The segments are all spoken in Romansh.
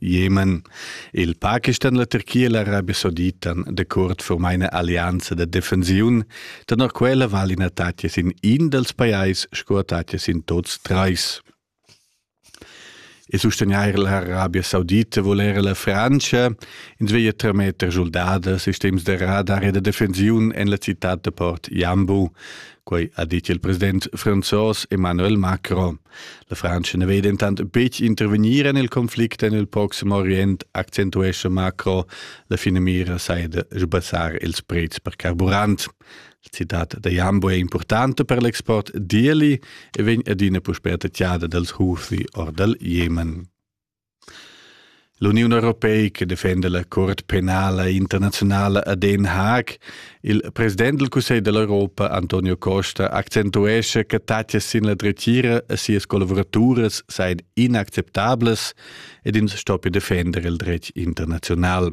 Jemen. Il Pakistan e la Turchia l'Arabia Saudita decuort for meine Allianza da defensiun, tenor quella val in attacchas in in dels pajais sco attacchas in tots treis. E sustagnair l'Arabia Saudita vul era la Francia, ins veglia trametter soldadas, sistems de radar e de defensiun en la città de Port Jambu, Quei ha detg il president franzos Emmanuel Macron. La Frantscha ne vei dentant betg intervegnir en il conflict en il proxim Orient, accentuesce Macron. La fine mira sai de sbassar ils prezs per carburant. Il citat da Jambo è importante per l'export d'Ieli e vegn adina puspè tagliada dals Houthi or dal Jemen. L'Uniun europeica defenda la Cort penala internaziunala a Den Haag. Il president del Cussegl dell'Europa, Antonio Costa, accentuescha che tatgas sin la dretgira a sias collaboraturas seien inacceptablas ed ins stoppi defender il dretg internazional.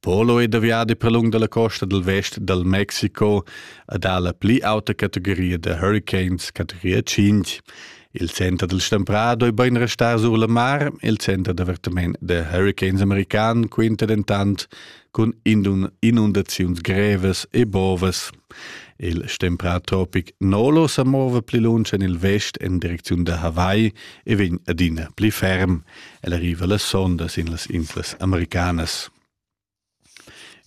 Polo è da viadi per lung dalla costa dal vest dal Mexico ed ha la pli auta categoria da hurricanes, categoria 5. Il center del Stemprà doi bain restar sur la mar, il center d'avertament da hurricanes american quinta dentant cun inundaziuns grevas e bovas. Il stemprà tropic Nolo sa mova pli lunsch en il vest en direcziun da Hawaii e vegn adina pli ferm. El arriva la sonda sin las inslas americanas.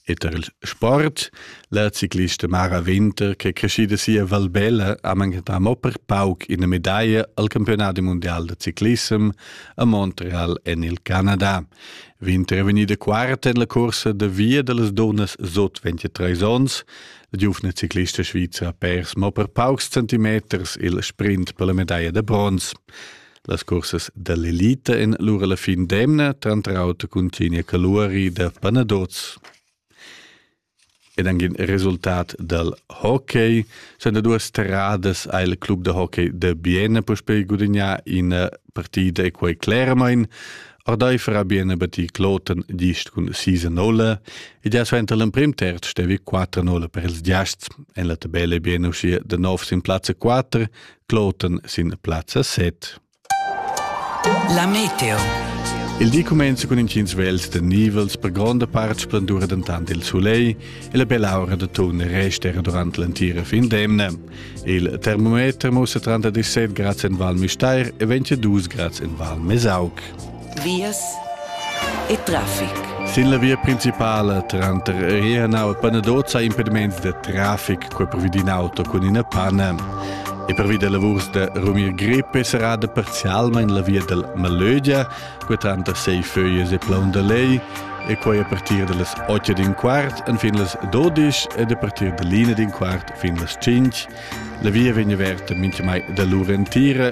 E tar il sport, la ciclista Mara Winter, che è crescida sia Valbella, ha manchentà mo per pauc ina medaglia al campionat mundial da ciclissem a Montreal en il Canada. Vint è vegnida quarta en la cursa da via da las dunnas sut 23 onns. La giuvna ciclista svizra ha pers mo per paucs centimeters il sprint per la medaglia da bronz. Las cursas dall'elita en lura la fin d'emna, tranter auter cun Tignia Caluari da Panaduz. ed angin resultat dal hockey. Sen da duas terradas ha il club da hockey de Biena puspei gudignà ina partida e quei claramain. Ordeifer ha Biena batti Kloten gist cun 6-0 ed ja suenter l'emprim terz stevi 4-0 per ils giasts. En la tabella Biena uschia de nov sin plazza 4, Kloten sin plazza 7. La meteo. Il di cumenza cun intgins vels da nivels, per gronda part splendura dentant il sulegl e la bella aura da tun resta era durant l'entira fin d'emna. Il termometer mussa tranter 17 grads en Val Müstair e 22 grads en Val Mesauc. vias e traffic. Sin la via principala tranter Rienau e Panadozza ha impediments da traffic quei pervi d'in auto cun ina panna. E pervi da lavurs da Rumir Grippe serrada parzialmein la via dal Malögia, quei tranter sei föies e Plaun da Lei, e quei a partir dallas 8 din quart fin las 12 ed a partir dall'ina din quart fin las 5. La via vegn averta mintgamai da l'ura entira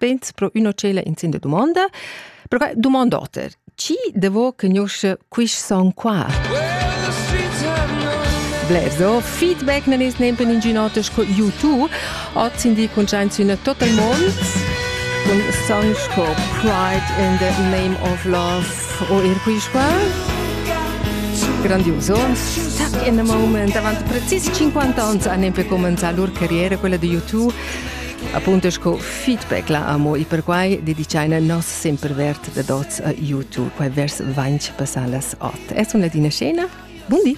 Pens pro üna cella in sin da dumonda. Però dumond oter. Chi devo conosce quist song qua? Blers o feedback nan is nempen in ginotes co YouTube. Oz in di con gens in total mond con songs co Pride in the Name of Love o ir quist qua. Grandioso. Stuck in the moment. Avant precis 50 ans a nempe comenza lur carriera quella di YouTube. Appunto sco feedback la amo e perquai dedichaina nos sempre vert da dots a YouTube, quai vers 20 passalas 8. Es una tina scena. Buondì!